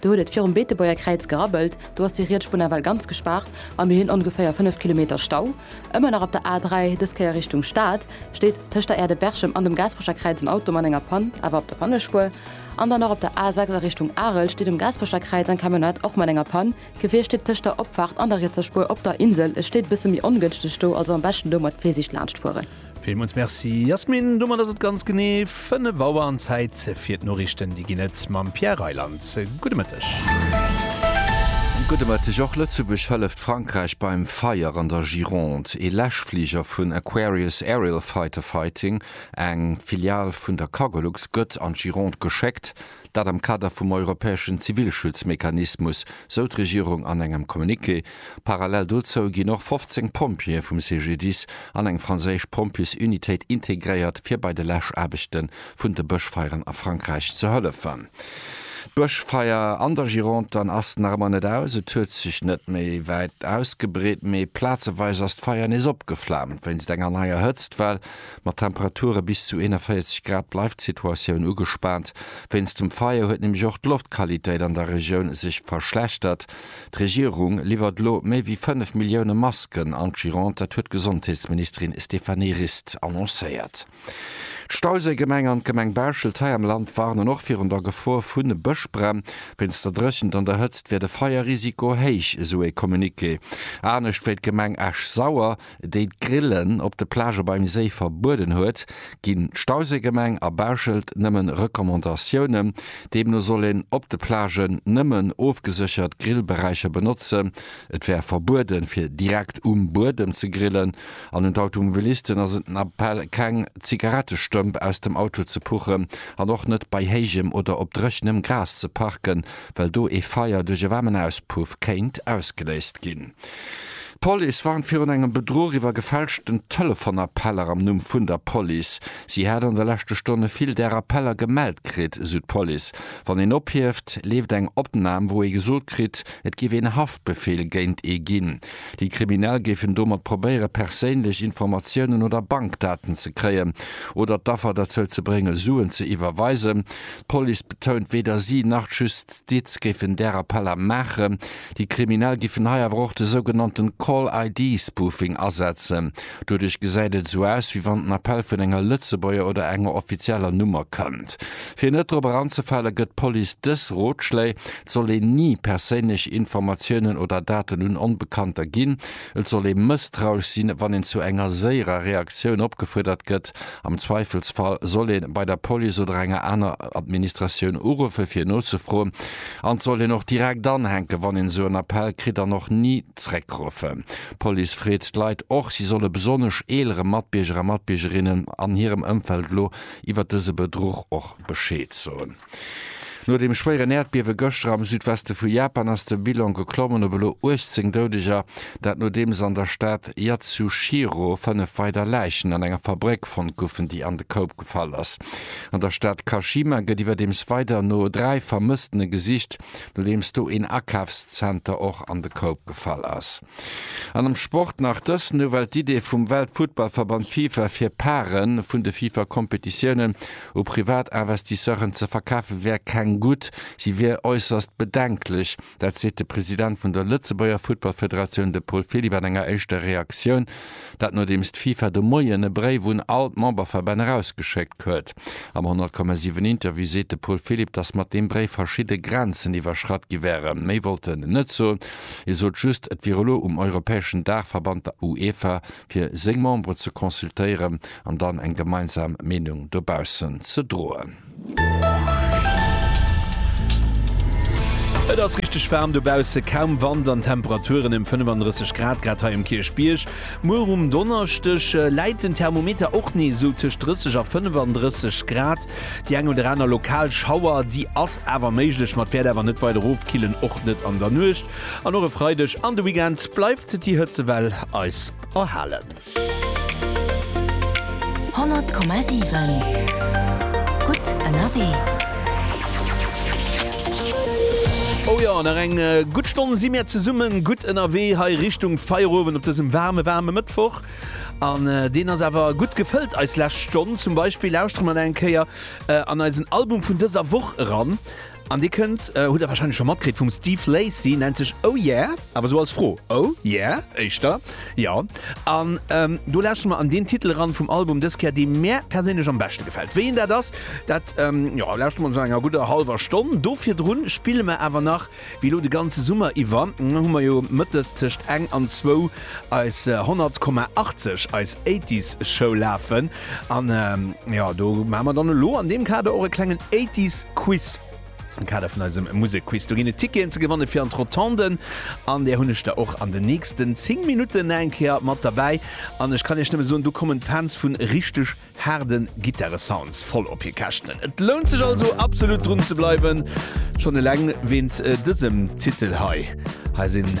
Do huet et virum Beetebuerger Kräiz gerabbelt, do ass déi riets Spun ewell ganz gespaart a mir hunn ongeféier 5 Kilometer Stau. Ëmmer nach op der A3, dës Kéier Richtung Stad, steet tëscht der Aire de Berchem an dem Gaasperecher Kräiz en Auto mat enger Pann, awer op der Pannespuer. An dann och op der A6 a Richtung Arel steet um Gaasperecher Kräiz eng Camionnette, och mat enger Pann. Gefier steet tëscht der Opfaart an der rietser Spuer op der Insel, et steet e bësse méi ongënschteg do, also am beschten domat Virsiicht laanscht fueren. Villmools Merci Yasmine. Domat ass et ganz genee 5 Auer an Zäit fir d'Noriichten. Déi ginn et mam Pierre Reyland. Gudde Mëtteg. Gudde Mëtteg. Och Lëtzebuerg hëlleft Frankräich beim Feier an der Gironde. Ee Läschfliger vun Aquarius Aerial Fighter Fighting, eng Filial vun der Cargolux, gëtt an d'Gironde geschéckt. Dat am Kader vum europäeschen Zivilschutzmechanismus, sou d'Regierung an engem Communiqué. Parallel dozou ginn och 15 Pompjeeë vum CGDIS an eng franséisch Pompjesunitéit integréiert, fir bei de Läschaarbechte vun de Bëschfeieren a Frankräich ze hëllefen. D'Bëschfeier an der Gironde dann ass nach ëmmer net aus. Et huet sech net méi wäit ausgebreet, mee plazeweis ass d'Feier nees opgeflaamt, wéinst enger neier Hëtztwell. Mat Temperature bis zu 41 Grad bleift d'Situatioun ugespaant. Wéinst dem Feier huet nämlech och d'Loftqualitéit an der Regioun sech verschlechtert. D'Regierung liwwert elo méi wéi 5 Millioune Masken an d'Gironde, dat huet d'Gesondheetsministerin Stéphanie Rist annoncéiert. D'Stauséigemeng an d'Gemeng Bauschelt hei am Land warnen och virun der Gefor vu Bëschbränn. Wéinst der Dréchent an der Hëtzt wier de Feierrisiko héich, esou ee Communiqué. Anescht wéi d'Gemeng Esch-Sauer, déi d'Grillen op de Plagë beim Séi verbueden huet, ginn d'Stauséigemeng a Bauschelt nëmme Recommandatiounen. Deemno soll een op de Plagen nëmmen ofgeséchert Grillberäicher benotzen. Et wär verbueden, fir direkt um Buedem ze grillen. An un d'Automobilisten ass et den Appell, keng Zigarettestëmp aus dem Auto ze puchen an och net bei héijem oder op dréchenem Gras ze parken, well do ee Feier duerch e waarmen Auspuff kéint ausgeléist ginn. D'Police warnt virun engem Bedruch iwwer gefälschten Telefonappeller am Numm vun der Police. Si hätt an de leschte Stonne vill där Appeller gemellt kritt, esou d'Police. Wann een ophieft, leeft eng Opnam, wou ee gesot kritt, et géif een Haftbefeel géint ee ginn. Déi Kriminell géifen domat probéiere perséinlech Informatiounen oder Bankdaten ze kréien oder d'Affer derzou ze brénge Suen ze iwwerweisen. D'Police betount, weder si nach d'Justiz géifen där Appeller maachen. Déi Kriminell giffen hei awer och de sougenannte Call ID Spoofing asetzen. Doduerch gesäit et esou aus, wéi wann den Appell vun enger Lëtzebuerger oder enger offizieller Nummer kënnt. Fir net drop eranzefale gëtt d'Police dës Rotschléi, Et soll een ni perséinlech Informatiounen oder Daten un Onbekannter ginn, Et soll ee mësstrausch sinn, wann een zu enger séierer Reaktioun opgefuerdert gëtt. Am Zweifelsfall soll ee bei der Police oder enger aner Administratioun uruffen, fir nozefroen. An et soll een och direkt anhänken, wann een esou en Appell kritt, an och ni zréckruffen. D'Police freet d'Leit och, si solle besonnesch eelere Matbierger a Matbiergerinnen an hirem Ëmfeld elo iwwert dëse Bedruch och Bescheed soen. No dem schwéieren Äerdbiewe gëschter am Südweste vu Japan ass de Bilan geklommen op elo 18 Doudeger. Dat nodeems an der Stad Yatsushiro 5 weider Läichen an enger Fabréck fonnt goufen, déi an de Koup gefall ass. An der Stad Kashima gëtt iwwerdeems weider no 3 Vermësstene gesicht, nodeems do een Akafszenter och an de Koup gefall ass. An am Sport nach dës Nouvelle, D'Idee vum Weltfuttballverband Fifa fir Pare vun de Fifa-Kompetitiounen u privat Investisseuren ze verkafe wär keng gutt, si wier äusserst bedenklech. Dat seet de President vun der Lëtzebuerger Futtballfederatioun, de Paul Philipp an enger éischter Reaktioun. Dat nodeems d'FIFA de Moien e Bréif un all d'Memberverbänn erausgeschéckt huet. Am 100,7 Interview seet de Paul Philipp, datt mat deem Bréif verschidde Grenzen iwwerschratt gi wären. Méi wollt en net soen. Hie sot just, et wier elo um europäeschen Daachverband, der UEFA, fir seng Membere ze consultéieren an dann eng gemeinsam Meenung dobaussen ze droen. Et ass richteg waarm dobausse, kaum Wand an d'Temperaturen ëm 35 Grad grad hei um Kierchbierg. Muer um Donneschdeg läit den Thermometer och nees esou tëscht 30 a 35 Grad. Déi eng oder aner lokal Schauer, déi ass awer méiglech, ma d'Wäert awer net weider ofkillen, och net an der Nuecht. An och e Freideg an de Weekend bleift déi Hëtzewell eis erhalen. 100,7 Gutt ënnerwee. Oh jo, nach eng gutt Stonn si mir zesumme gutt ënnerwee hei Richtung Feierowend op dësem waarme, waarme Mëttwoch. An deen ass awer gutt gefëllt, eis lescht Stonn. Zum Beispill lauschtere mer nach eng Kéier an eisen Album vun dëser Woch eran. An Dir kënnt, hutt Der wahrscheinlech scho matkritt, vum Steve Lacy, nennt sech Oh Yeah? Awer esou als Fro, Oh Yeah? Éischter Jo. An do lauschteren mer an deen Titel eran vum Album dës Kéier, dee mär perséinlech am beschte gefält. Wéi een dat ass, dat jo lauschteren mer no enger gudder hallwer Stonn. Do virdrun spille mer awer nach, wéi elo de ganze Summer iwwer, hu mer jo mëttes tëscht eng an zwou eis 100,80, eis 80s Show lafen. An jo, do maache mer dann elo an deem Kader och e klengen Eighties Quiz am Kader vun eisem Musekquiz. Do ginn et Ticketen ze gewanne fir an d'Rotonden an där hunn ech der och an den nächsten 10 Minutten nach eng Kéier mat derbäi. An ech kann Iech nëmme soen, do kommen d'Fans vu richteg haarde Gittaresounds voll op hir Käschten. Et lount sech also absolut drun ze bleiwen, schonn eleng wéint dësem Titel hei. Hei sinn.